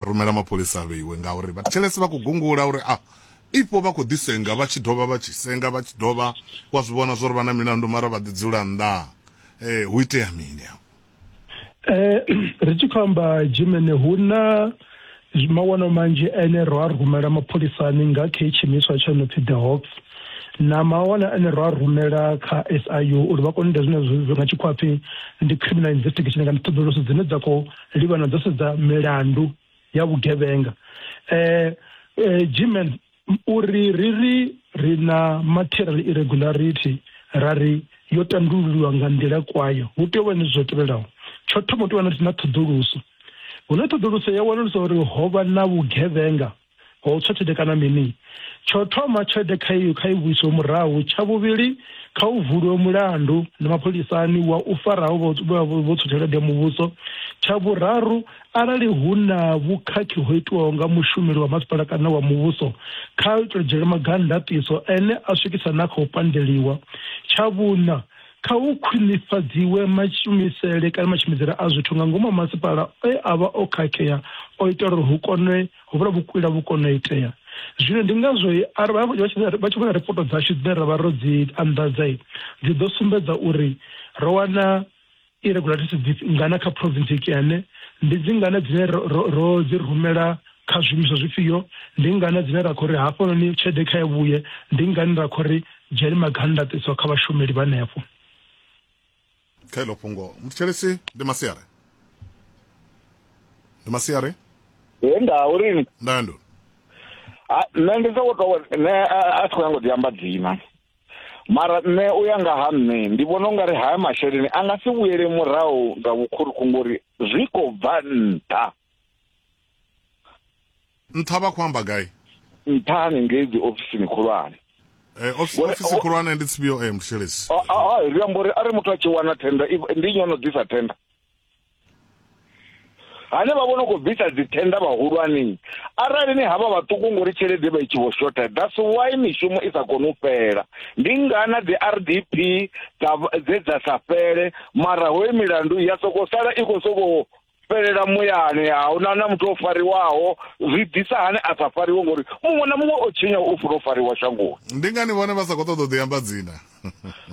Rumela mapholisa a vheiwe ngauri vhathetshelesi vha khou gungula uri a ifho vha khou ḓi senga vha tshi dovha vha tshi senga vha tshi dovha wa zwi vhona zwori vha na milandu mara vha ḓi dzula nnḓa eh hu itea mini afho Eh ri tshi khou amba Jimene hu na mawono manzhi ane ro a rumela mapholisani nga khe tshimiswa tsho no pfi The Hawks na mawana ane ro a rumela kha SIU uri vha kone u ita zwine zwa nga tshikhuwa pfi ndi criminal investigation kana ṱhoḓuluso dzine dza khou livhana dzo sedza milandu ya vhugevhenga eh, eh, gmen uri ri ri ri na material irregularity ra ri yo tandululiwa nga nḓila kwayo hu tea u vha ni zwo tevhelaho tsho thoma u tea u vha na ṱhoḓuluso hune ṱhoḓuluso ya wanulusa uri ho vha na vhugevhenga ho tswa tshelede kana mini tsho thoma tshelede kha iyo kha i vhuiswe murahu tsha vhuvhili kha u vuliwe mulandu na mapholisani wa u faraho vho tswa tshelede ya muvhuso tsha vhuraru arali hu na vhukhakhi ho itiwaho nga mushumeli wa masipala kana wa muvhuso kha u tou dzhiela maga ndaṱiso ene a swikisa na kha u pandeliwa tsha vhuṋa Kha hu khwinifhadziwe mashumisele kana mashumidzele a zwithu nga ngomu ha masipala e a vha o khakhea o ita uri hu kone ho vhula vhukwila vhu kone u itea. Zwino ndi ngazwo arali vha tshi vhona ripoto dzashu dzine ra vha ro dzi anḓadza dzi ḓo sumbedza uri ro wana irregularity dzi ngana kha province Kiane, ndi dzi ngana dzine ro dzi rumela Kha zwiimiswa zwifhio? Ndi ngani dzine ra khou ri hafhanoni tshelede kha i vhuye? Ndi ngani ra khou ri dzhiani maga a ndaṱiso kha vhashumeli vha henefho? Kha iḽo fhungo, muthetshelesi ndi Masiari. Ndi Masiari? Hee, nda u ri ni? Nda ndi u ri? Ha, nṋe ndi soko tou, nṋe a thi khou nyanga u ḓi amba dzina. Mara nṋe u ya nga ha nṋe, ndi vhona u nga ri haya masheleni a nga si vhuyele murahu nga vhukhuruku ngori zwi khou bva nṱha. nṱha vha khou amba gai nṱha hanengei dzi ofisini khulwane Eh, ofisi khulwane ndi tsibio eh, mshelesi ah, ah, ah, ri amba uri arali muthu a tshi wana tenda ndi nnyi ono ḓisa tenda hane vha vhono khou bvisa dzithenda vhahulwanei arali ni havha vhaṱuku ngori tshelede vha i tshi vho shotha that's why mishumo i sa koni u fhela ndi ngana dzi r d p dze dza sa fhele mara hoyo milandu ya soko sala i khou sokou fhelela muyani a hu na na muthu o fariwaho zwi ḓisa hani a sa fariwe ngori muṅwe na muṅwe o tshinya u funa u fariwa shangoni ndi ngani vhone vha sa khou ṱoḓa u ḓi amba dzina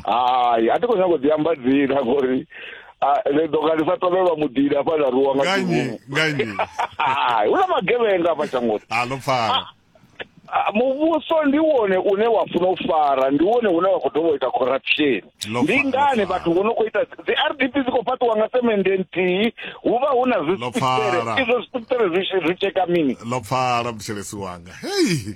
hai a thi khou nyanga u ḓi amba dzina ngori ri ḓo nga ndi sa tovhelwa muḓini afha na ruwa nga nganyi nganyi hai hu na magevhenga afha shangoni a ḽo pfala Ah, muvhuso ndi wone une wa funa u fara ndi wone une wa khou dovha u ita corruption Lo ndi fa- ngani lo fa- vhathu vho no khou ita dzi r d p dzi khou fhaṱiwa nga semende nthihi hu vha hu na Lo fara. zwisiṱere izwo zwisiṱere zwi tshi- zwi tsheka mini ḽo pfala muthelesi wanga hei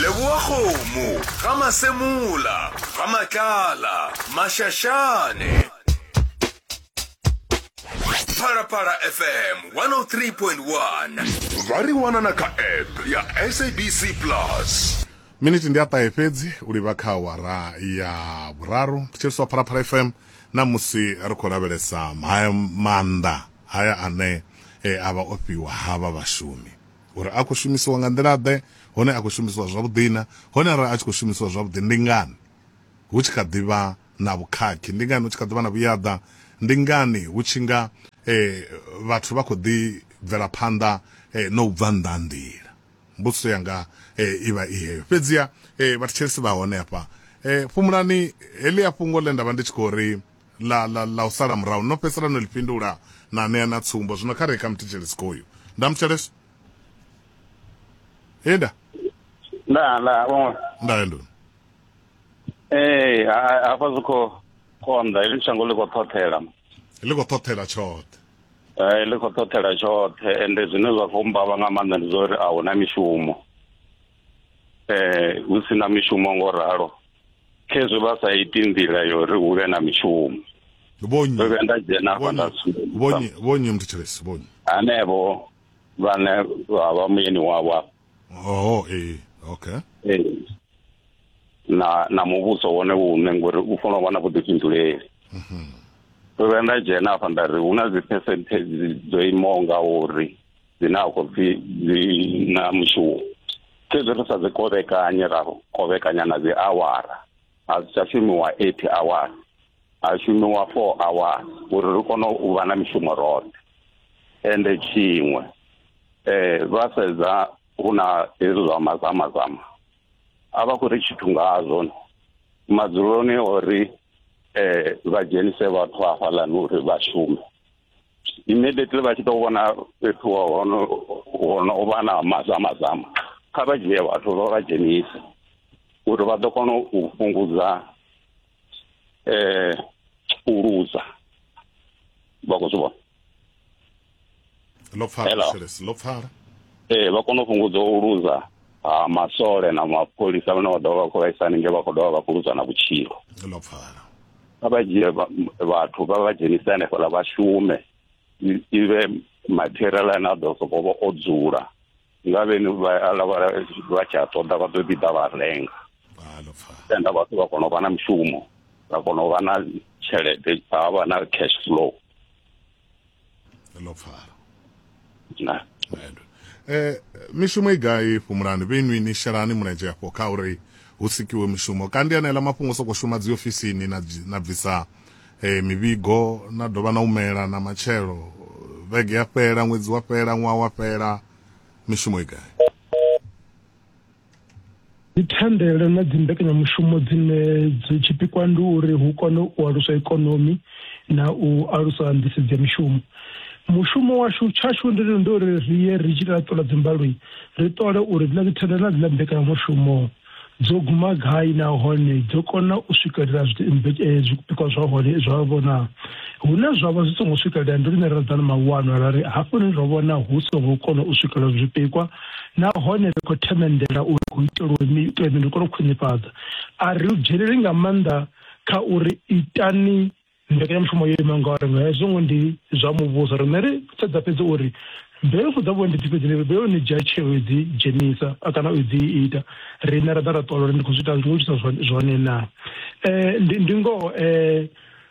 leboa kgomo ga masemola ga matlala mašašane pharapara fm 103.1 vha ri wanana kha app ya sabc plus miniti ndi aṱahe fhedzi u livha kha awara ya vhuraru thetsheliswa pharapara fm na musi ri khou lavhelesa maanḓa haya ane e a vha o fhiwa havha vhashumi, uri a khou shumisiwa nga nḓila-ḓe, hone a khou shumisiwa zwavhuḓi-na? Hone arali a tshi khou shumisiwa zwavhuḓi, ndi ngani hu tshi kha ḓi vha na vhukhakhi? Ndi ngani hu tshi kha ḓi vha na vhuyaḓa? Ndi ngani hu tshi nga vhathu vha khou ḓi bvela phanḓa na u bva nnḓa ha nḓila? Mbudziso yanga i vha i heyo. Fhedziha vhathetshelesi vha hone hafha, fhumulani heḽia fhungo ḽe nda vha ndi tshi khou ri ḽa ḽa ḽa u sala murahu no fhedzisela no ḽi fhindula na ṋea na tsumbo zwino kha reka muthetshele sikoyu nda muthelesa henda nda nda vhona nda hendo eh hafha zwi kho konda ili shango ḽi kho ṱhothela ḽi kho ṱhothela tshoṱhe eh ḽi kho ṱhothela tshoṱhe ende zwine zwa khou mbavha nga maanḓa ndi zwa uri a huna mishumo eh hu si na mishumo ngo ralo khezwi vha sa iti nḓila yo ri hu vhe na mishumo vhonyi ndo vhuya nda dzhena afha nda vhonyi vhonyi muthu tshelesi vhonyi hanevho vhane vha vha muyeni wavho afha oh eh okay eh na na muvhuso wone une ngori u fanela u vha na vhuḓifhinduleli mhm. ndo vhuya nda dzhena afha nda ri hu na dzi percentage dzo imaho nga uri dzine a khou pfhi dzi na mushumo fhedzi ri sa dzi kovhekanye ra kovhekanya na dzi awara a si tsha shumiwa eight awara ha shumiwa four awara uri ri kone u vha na mishumo roṱhe ende tshiṅwe um vha sedza hu na hezwi zwa mazamazama a vha khou ri tshithu ngazwo madzuloni ori um vha dzhenise vhathu hafhaḽani uri vha shume immediately vha tshi ḓo vhona fhethu hono hono vha na mazama zama kha vha dzhie vhathu vha vha dzhenise uri vha ḓo kona u fhungudza eh u luza vha khou zwi vhona ḽo pfala ḽo pfala ee vha kona u fhungudza u luza ha masole na mapholisa vhane vha ḓovha vha khou vhaisa haningei vha khou dovha vha khou luza na vhutshilo ḽo pfala vha vha dzhie vha- vhathu vha vha dzhenise hanefhaḽa vha shume i- i vhe material ane a ḓo sokou vha o dzula nga vheni vha ala vha vha tshi a ṱoḓa vha ḓo ḓi ḓa vha renga ha ḽo pfala tenda vhathu vha kona u vha na mushumo vha kona u vha na tshelede vha vha na cash flow ḽo pfala na eh mishumo i gai fhumulani vhenwi ni shelani mulenzhe afho kha uri hu sikiwe mishumo kandi anela mafhungo soko shuma dzi ofisini na na bvisa eh mivhigo na dovha na umela na matshelo vhege ya fhela ṅwedzi wa fhela ṅwaha wa fhela mishumo i gai ndi thandele na dzi mbekanyamushumo dzine dzi tshipikwa ndi uri hu kone u alusa ikonomi na u alusa nḓisedzo ya mishumo mushumo washu tshashu ndi ndi uri ri ye ri tshi ṱola dzimbaloi ri ṱole uri dzina dzi thandele na dzina mbekanyamushumo dzo guma gai nahone dzo kona u swikelela eh, zwipikwa zwa hone zwa vhona hune zwa vha zwi songo swikelela ndi lune ra ḓa na mawanwa ra ri hafhuni ro vhona hu songo kona u swikelela zwipikwa nahone ri khou themendela uri hu itelwe mi, itelwe mini ri kone u khwinifhadza. A ri dzheneleli nga maanḓa kha uri itani mbekanyamushumo yo imaho ngauri nga hezwo ngo ndi zwa muvhuso. Riṋe ri sedza fhedzi uri mbelufu dza vhuendi dzi fhedzi ni vheo ni dzhia tsheo u dzi dzhenisa kana u dzi ita riṋe ra ḓa ra ṱola uri ndi khou zwi ita ndi khou itisa zwone na ndi ndi ngoho um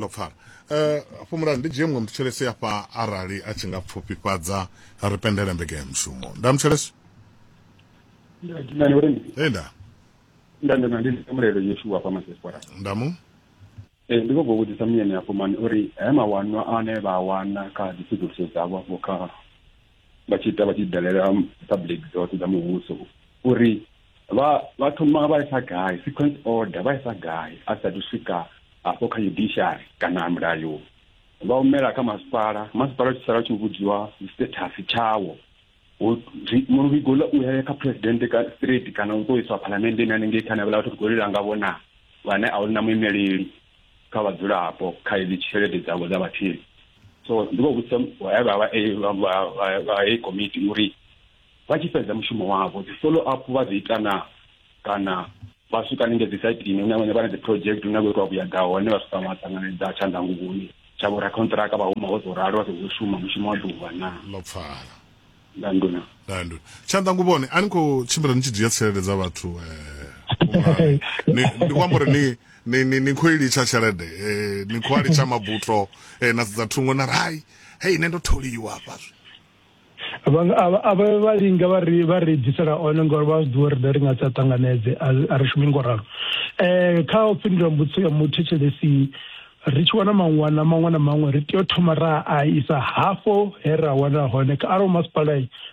ḽo pfala eh, afho mulali ndi dzhie muṅwe muthetshelesi afha arali a tshi nga pfufhifhadza ri pendele mbeke ya mushumo nda muthetshelesi e nda nda nda ndi mulelo yeshuwa afha masespora nda mu ee ndi khou bva vhudzisa muyeni afho mani uri he mawanwa ane vha wana kha dzi tsedzuluso dzavho afho kha vha tshi ita vha tshi dalela public dzoṱhe dza muvhuso uri vha vha thoma vha isa gai sequence order vha isa gai a sathu swika afho kha judiciary kana mulayo vha humela kha masipala masipala tshi sala tshi vhudziwa status tshawo muvhigo ḽa u ya kha president ka straight kana u tou iswa phalamendeni hanengei khana vhala vhathu khou lila ngavho na vhane a hu na muimeleli kha vhadzulapo kha hedzi tshelede dzavho dza vhatheli so ndi vho vhudzisa vha heyi komiti uri vha tshi fhedza mushumo wavho dzi follow up vha dzi ita na kana vha swika ninge dzi saitini hune vhone vha na dzi project hune vho itwa vhuyaḓa hone vha swika vha ṱanganedza tshandanguvhoni tsha vho rakhonṱiraka vha huma vho ḓo ralo vha ḓo shuma mushumo wa ḓuvha na ḽo pfala na nduna na nduna tshanḓa nguvhone a ni khou tshimbila ni tshi dzhia tshelede dza vhathu eh, ndi khou amba uri ni ni ni ni khou i litsha tshelede eh, ni khou a litsha mabuto eh, na sedza thungo na rai hei nṋe ndo tholiwa hafha zwi avha vha linga vha ri vha ri bvisela one ngori vha zwi ḓivha uri ri nga sa ṱanganedze a ri shumi ngo ralo um kha u fhindula mbudziso ya muthetshelesi ri tshi wana maṅwana maṅwe na maṅwe ri tea u thoma ra a isa hafho he ra wana hone ka arali masipala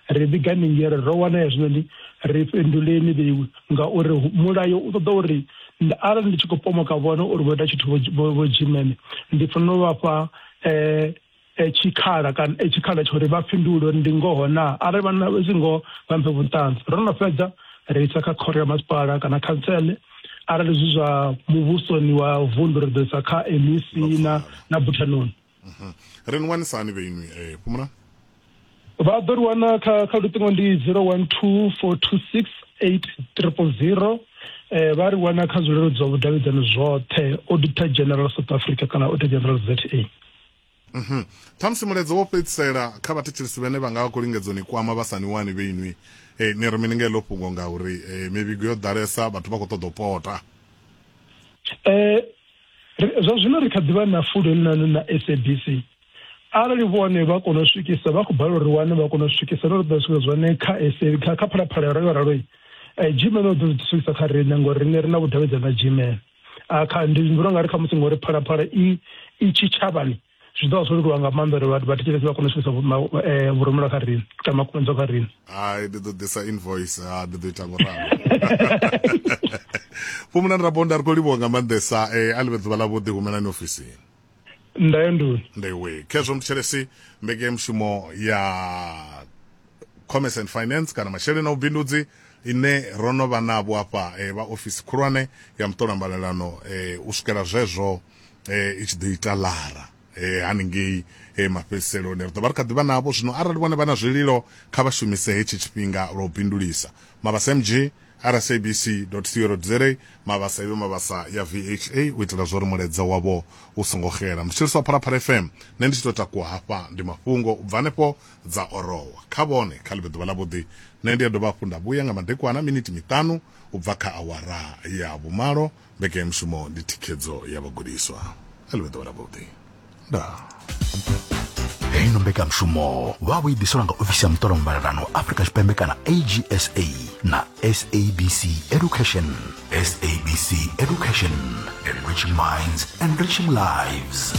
ri vhiga ningere ro wana hezwinoni ri fhinduleni vheiwi ngauri mulayo u ṱoḓa uri arali ndi tshi khou pomoka vhone uri vho ita tshithu vho dzhimene ndi fanela u vhafha um eh, e tshikhala kana e tshikhala tsha uri vha fhindule uri ndi ngoho na arali vha na zwi ngoho vha mphe vhuṱanzi ro no fhedza ri isa kha khoro ya masipala kana khantsele arali zwi zwa muvhusoni wa vundu ri ḓo isa kha mec na na buthanoni ri ni wanisani vheinwi eh, fhumula vha ḓo ri wana kha kha luṱingo ndi 0124268000 eh vha ri wana kha zwilelo zwa vhudavhidzani zwoṱhe auditor general south africa kana auditor general za mhm thamusi muledzo wo fhedzisela kha vhathetshelisi vhane vha nga vha khou lingedza ni kwama vha sa ni wani vhe inwi eh ni ri mini nga heḽo fhungo nga uri eh, mivhigo yo ḓalesa vhathu vha khou ṱoḓa u pota eh zwa zwino ri kha ḓivha na fulo elinani na sabc arali vhone vha kona u swikisa vha khou balelwa uri wane vha kona u swikisa no ṱoḓa swika zwone kha sa kha kha phalaphala ralo raloi eh, gmail o ḓo zwi swikisa kha riṋe ngori riṋe ri na vhudavhidzani na gmail ah, kha ndi vhona nga ri kha musi ngori phalaphala i i tshitshavhani zwi ḓo vha zwo leluwa nga maanḓa uri vhathu vhathetshelesi vha kone u swikisa eh, vhurumela kha riṋe kana makumedzwa kha riṋe hai ndi ḓo ḓisa invoice ha ah, ndi ḓo ita ngoralo vho munani rabonda ri khou livhuwa nga maanḓesa um a ḽi vhe ḓuvha ḽa vhuḓi humelani ofisini ndayondoni ndewe khezwo muthetshelesi mbekemushumo ya commerce and finance kana masheleni na vhubindudzi ine ro no vha navho afha eh, vha ofisi khulwane ya muṱola mbalelano eh, u swikela zwezwo eh, i tshi ḓo ita lara eh, haningei eh, mafhedziselo ri ḓo vha ri kha ḓivha navho zwino arali vhone vha na zwililo kha vha shumise hetshi tshifhinga lwa u bindulisa mavhasa mg rsabc.co.za mabasa ive mabasa ya vha u itela zwori mulaedza wavho u songo xela mutshiliswa wa phalaphala fm nṋe ndi tshi tou takuwa hafha ndi mafhungo u bva hanefho dza orowa kha vhone kha ḽi vhe ḓuvha ḽavhuḓi nṋe ndi a dovha hafhu nda vhuya nga madekwana miniti miṱanu u bva kha awara ya vhumalo Mbekanyamushumo ndi thikhedzo ya vhagudiswa. A ḽi vhe ḓuvha ḽavhuḓi. Ndaa. heyi no mbekanyamushumo vha vho i ḓiselwa nga ofisi ya muṱolo muvhalelano afrika tshipembe kana agsa na sabc education sabc education enriching minds enriching lives